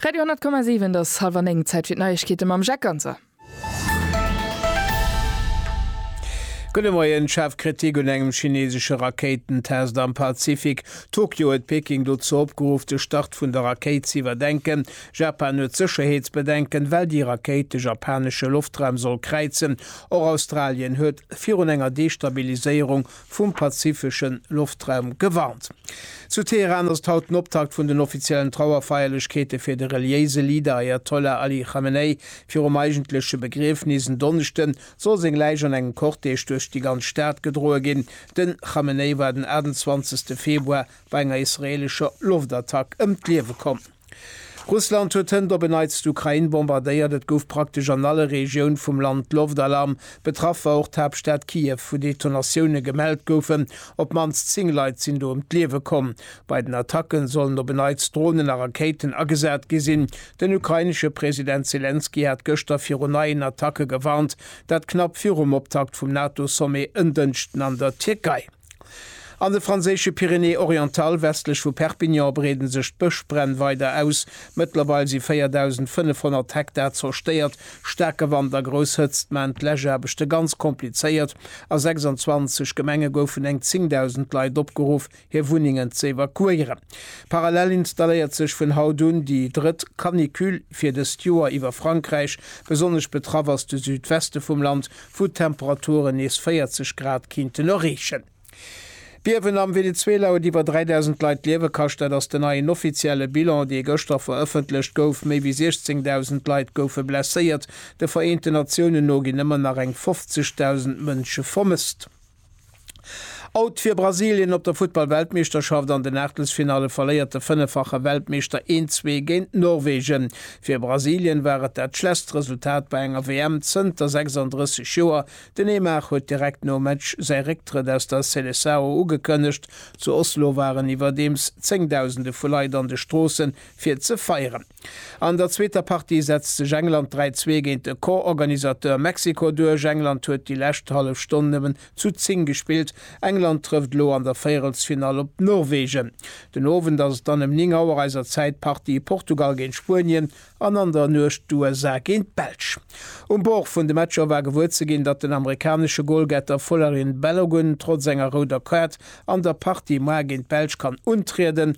Radio 10,7 et ass hallwer 9, Zäit fir d'Neiegkeete mam Jacques Ganser. Gudde Moien, Schaarf Kritik un engem chineesesche Rakéitentest am Pazifik, Tokio huet Peking dozou opgeruff, de Start vun der Rakéit ze iwwerdenken, Japan huet Sécherheetsbedenken, well déi Rakéit de japanesche Loftraum soll kräizen, och Australien huet virun enger Destabiliséierung vum pazifesche Loftraum gewarnt. Zu Teheran ass et haut den Optakt vun den offiziellen Trauerfeierlechkeete fir de reliéise Leader Ajatollah Ali Khamenei. Virum eigentleche Begriefnis en Donneschde soll seng Läich an engem Cortège duerch déi ganz Stad gedroe ginn. Den Khamenei war den 28. Februar bei enger israeelescher Loftattack ëm d'Liewe komm. Russland huet hënt op en Neits d'Ukrain bombardéiert. Et gouf praktesch an alle Regioun vum Land Loftalarm. Betraff war och d'Haaptstad Kiew, wou Detonatioune gemellt goufen. Op d'mannst 10 Leit sinn do ëm d'Liewe komm. Bei den Attacke sollen op en Neits Dronen a Rakéiten agesat gi sinn. Den ukrainesche President Selenskyj hat gëschter viru neien Attacke gewarnt. Dat knapp virum Optakt vum NATO-Sommet en Dënschden an der Tierkei. An de franséische Pyrénées-Orientales, westlech vu Perpignan, breeden sech d'Bëschbränn weider aus. Mëttlerweil si 4.500 Hektar zerstéiert. Staarke Wand a grouss Hëtzt maachen d'Läschaarbechte ganz komplizéiert. A 26 Gemenge goufen eng 10.000 Leit opgeruff, hir Wunnengen z'evakuéieren. Parallel installéiert sech vun haut un déi drëtt Canicule fir dëst Joer iwwer Frankräich. Besonnesch betraff ass de Südweste vum Land, wou d'Temperaturen nees 40 Grad kinnten erreechen. D'Biewen am Venezuela huet iwwer 3.000 Leit d'Liewe kascht. Dat ass den neien offizielle Bilan, dee gëschter verëffentlecht gouf. Méi wéi 16.000 Leit goufe blesséiert. De Vereenten Natiounen no ginn ëmmer nach eng 50.000 Mënsche vermësst. Out fir Brasilien op der Futtball-Weltmeeschterschaft, An den Aachtelsfinalle verléiert de fënneffache Weltmeeschter 1, 2 géint Norwegen. Fir Brasilien war et dat schlesst Resultat bei enger WM zënter 36 Joer. Den Neymar huet direkt nom Match säi Récktrëtt aus der Seleçao ugekënnegt. Zu Oslo waren iwwerdeems zéngdausende vu Leit an de Stroossen fir ze feieren. An der zweeter Partie setzt sech England 3, 2 géint de Co-Organisateur Mexiko duerch. England huet déi lescht hallef Stonn nëmmen zu 10 gespillt. England trëfft elo an der Véierelsfinall op Norwegen. Den Owend ass et dann ëm 9 Auer eiser Zäit d'Partie Portugal géint Spuenien an an der Nuecht d'USA géint d'Belsch. Um Bord vun de Matcher war gewuer ze ginn, datt den amerikanesche Golgetter Folarin Balogun trotz enger rouder Kaart an der Partie muer géint d'Belsch kann untrieden.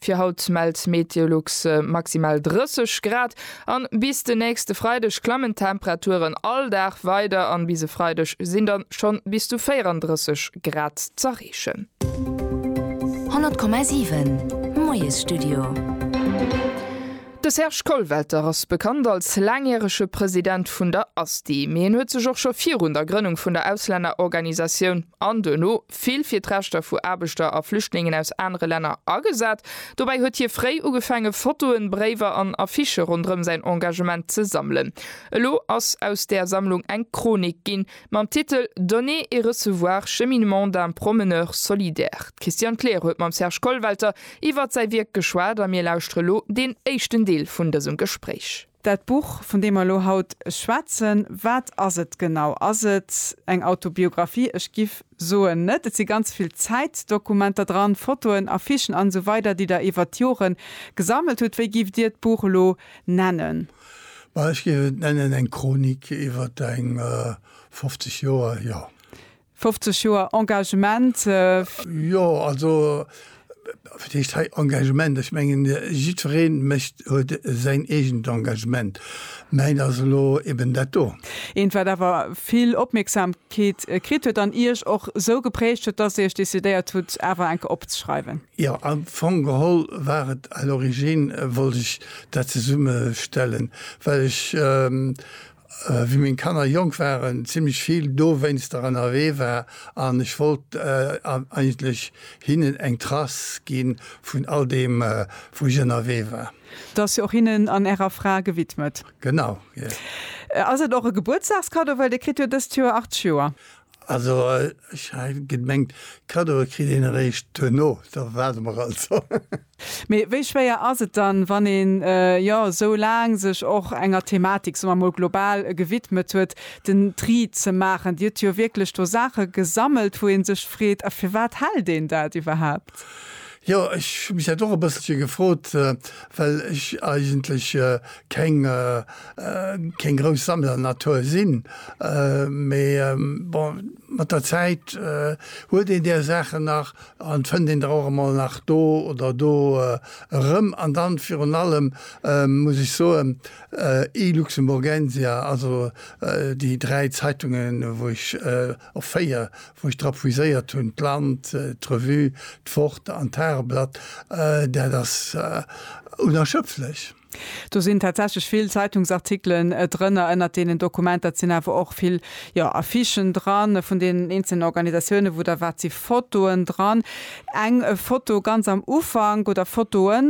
Fir haut mellt Meteolux maximal 30 Grad an bis de nächste Freideg klammen d'Temperaturen all Dag weider an bis e Freideg sinn dann schonn bis zu 34 Grad z'erreechen. 100,7 Moiesstudio. De Serge Kollwelter ass bekannt als laangjärege President vun der ASTI, mee en huet sech och scho virun der Grënnung vun der Auslännerorganisatioun an duerno vill fir d'Rechter vu Aarbechter a Flüchtlingen aus anere Länner agesat. Dobäi huet hie fréi ugefaange Fotoen, Bréiwer an Affichë ronderëm säin Engagement ze sammelen. Elo ass aus där Sammlung eng Chronik ginn, mam Titel Donner et recevoir, cheminement d'un promeneur solidaire. D'Christiane Kleer huet mam Serge Kollwelter iwwert säi Wierk geschwat a mir lauschtere lo deen éischten Deel vun dësem Gespréich. Dat Buch, vun deem mer elo haut schwätzen, wat ass et genau? Ass et eng Autobiographie? Ech giff soen, net. Et si ganz vill Zäitdokumenter dran, Fotoen, Affichen an esou weider, déi Der iwwert d'Joren gesammelt hutt. Wéi gifft Dir d'Buch elo nennen? Ma ech géif et nennen eng Chronik iwwert eng 50 Joer, jo. 50 Joer Engagement. Jo, also, wat heescht hei Engagement? Ech mengen, jiddweree mécht, huet säin eegent Engagement. Mäint ass elo eben dat do. Eent, wat awer vill Opmierksamkeet kritt huet an Iech och esou geprägt huet, dass Dir Iech decidéiert hutt, awer eng Kéier opzeschreiwen. Jo, am Fong geholl war et à l'origine, wollt ech dat zesummestellen, well ech Wéi meng Kanner jonk waren, zimmlech vill dowéinster ënnerwee war an ech wollt eigentlech hinnen eng Trace gi vun all deem, wou ech ënnerwee war. Da ass jo och hinnen an ärer Fra gewidmet. Genau, jo. Ass et och e Gebuertsdagskaddo, well Dir kritt jo dëst Joer 80 Joer? Also ech hat gemengt, Kaddoe kritt een eréischt duerno, da waarde mer also. Mee wéi schwéier ass et dann, wann een, jo, esou laang sech och enger Thematik, soe mer emol global, gewidmet huet, den Tri ze maachen? Dir hutt jo wierklech do Saache gesammelt, wou ee sech freet, A firwat hält een dat iwwerhaapt? Jo, ech hu mech dat och e bësselche gefrot, well ech eigentlech keng grouss Sammlernatur sinn. Mee bon, mat der Zäit huet een där Saachen nach En fënnt een der och emol nach do oder do erëm. An dann virun allem muss ech soen, iLuxemburgensia, also déi dräi Zeitungen, wou ech, och véier, wou ech dra puiséiert hunn, d'Land, d'Revue, d'Wort an d'Tageblatt, dat ass unerschöpflech. Do sinn tatsächlech vill Zeitungsartikelen drënner, ënnert deenen Dokumenter. Et sinn awer och vill, jo, Affichen dran vun deenen eenzelnen Organisatiounen, wou der waart. Et si Fotoen dran. Eng Foto ganz am Ufank, oder Fotoe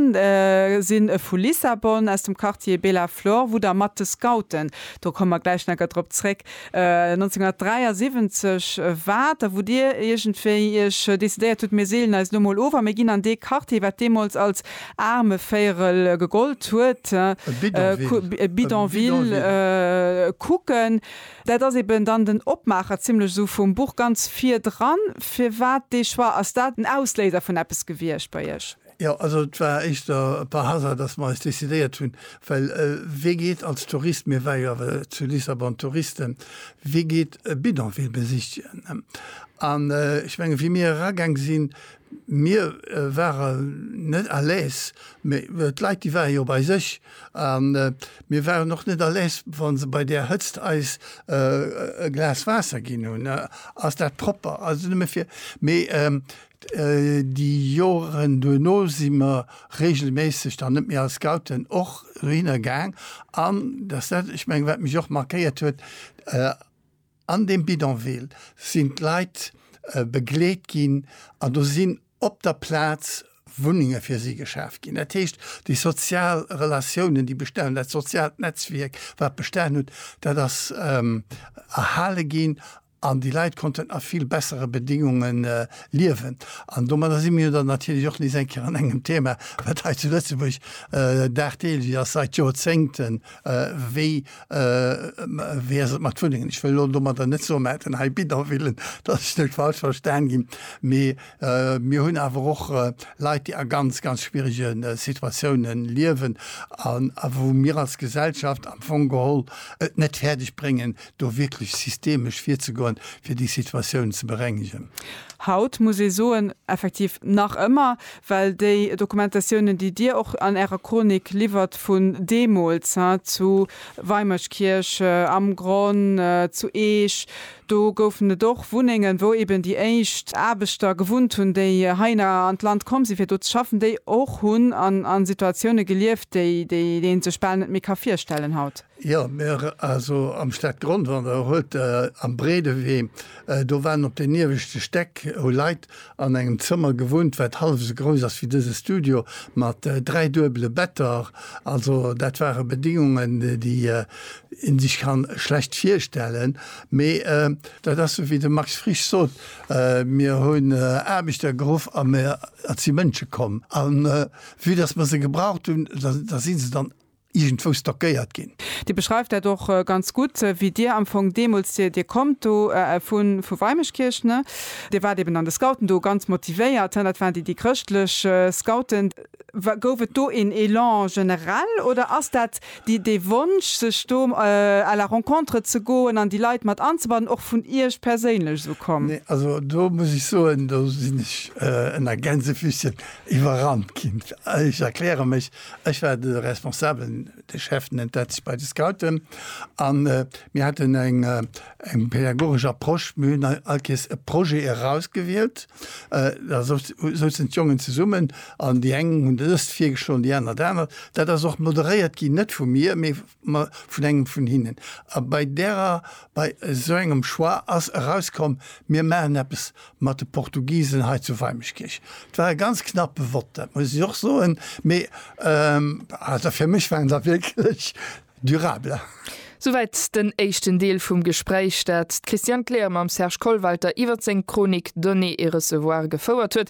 si vu Lissabon, aus dem Quartier Bela Flor, wou der mat de Scouten, do komme mer gläich nach drop zréck, 1973 war et da, wou Dir iergendwéi Iech decidéiert hutt, mir seelen eis elo emol of a mir ginn an dee Quartier, wat deemools als Aarmevéierel gegollt huet, e Bidonville, kucken. Dat ass eben dann den Opmaacher zimlech esou vum Buch ganz virdran. Firwat dee Choix? Ass dat en Ausléiser vun eppes gewiescht bei Iech? Jo, also et war éischter par hasard, dass mer eis decidéiert hunn, well wee geet als Tourist, mir ware jo awer zu Lissabon Touristen, wee geet e Bidonville besichtigen? An ech mengen, wéi mir eragaang sinn, mir ware net à l'aise, mä d'Leit, déi ware jo bei sech a mir waren och net à l'aise, wa se bei där Hëtzt eis e Glas Waasser ginn hunn, Ass dat propper? Also nëmme fir, mee Déi Joren duerno si mer reegelméisseg dann net méi als Scouten och dohinner gaang. An dat ass dat, ech mengen, wat mech och markéiert huet, An deem Bidonville sinn d'Leit begleet ginn an do sinn op der Plaz Wunnenge fir si geschaf ginn. Dat heescht, déi sozial Relatiounen, déi bestanen hunn, dat soziaalt Netzwierk, wat bestanen huet, dat ass erhale ginn An déi Leit konnten a vill bessere Bedingunge liewen. An domadder si mir jo dann natierlech och nees eng Kéier an engem Thema, wat hei zu Lëtzebuerg dagdeelech ass, seit Jorzéngten, wéi ass et mat Wunnengen? Ech wëll elo domadder net soen, mir hätten hei Bidonvillen, dass ech net falsch verstan ginn, mee mir hunn awer och Leit, déi a ganz, ganz schwierege Situatioune liewen a wou mir als Gesellschaft am Fong geholl et net fäerdeg bréngen, do wierklech systemesch virzegoen, fir déi Situatioun ze berengegen. Haut muss ee soen, effektiv nach ëmmer, well déi Dokumentatiounen, déi Dir och an Ärer Chronik liwwert vun deemools, he, zu Weimerskirch, am Gronn, zu Eech, do goufen et och Wunnengen, wou eben déi éischt Aarbechter gewunnt hunn, déi heihinner an d'Land komm sinn, fir do ze schaffen, déi och hunn an Situatioune gelieft, déi een sech bal net méi ka virstellen haut. Jo, mir, also am Stadgrondwall, der huet Der am Breedewee, do waren op den ieweschte Stäck, hu Leit an engem Zëmmer gewunnt, wat hallef esou grouss ass wéi dëse Studio, mat dräi duebele Better. Also dat ware Bedingungen, déi ee sech ka schlecht virstellen. Mee dat ass esou wéi de Max Frisch sot, Mir hunn Aarbechter geruff a mir, et si Mënsche komm. A vue dass mer se gebraucht hunn, da si se dann iergendwou stockéiert ginn. Dir beschreift dat och ganz gutt, wéi Dir am Fong deemools, Dir, Dir kommt do vu vu Weimeschkierch, ne? Dir waart eeben an de Scouten do ganz motivéiert, he? Dat waren déi, déi chrëschtlech Scouten. Wa gouf et do een Élan generell oder ass dat déi, dee Wonsch, sech do à la rencontre ze goen an déi Leit mat anzebannen, och vun Iech perséinlech esou komm? Nee, also do muss ech soen, do sinn ech ënner Gänsefüßchen iwwerrannt ginn. Ech erkläre mech, Ech war de Responsablen, de Chef nennt dat sech bei de Scouten. An mir haten eng eng pädagogesch Approche. Mir hunn all Kees e Projet erausgewielt. Da souzen d'Jongen zesummen an déi eng hunn dëst virgeschloen, déi aner dat anert. Dat ass och moderéiert ginn, net vu mir, mee ma vun engem vun hinnen. A bei därer, bei esou engem Choix ass erauskomm, mir maachen eppes mat de Portugisen hei zu Weimeschkierch. Et war e ganz knappe Vott, dat muss ech och soen, mee also fir mech waren se wierklech durable. Souwäit den éischten Deel vum Gespräch, dat d'Christiane Kleer mam Serge Kollwalter iwwert seng Chronik Donner et recevoir gefouert huet.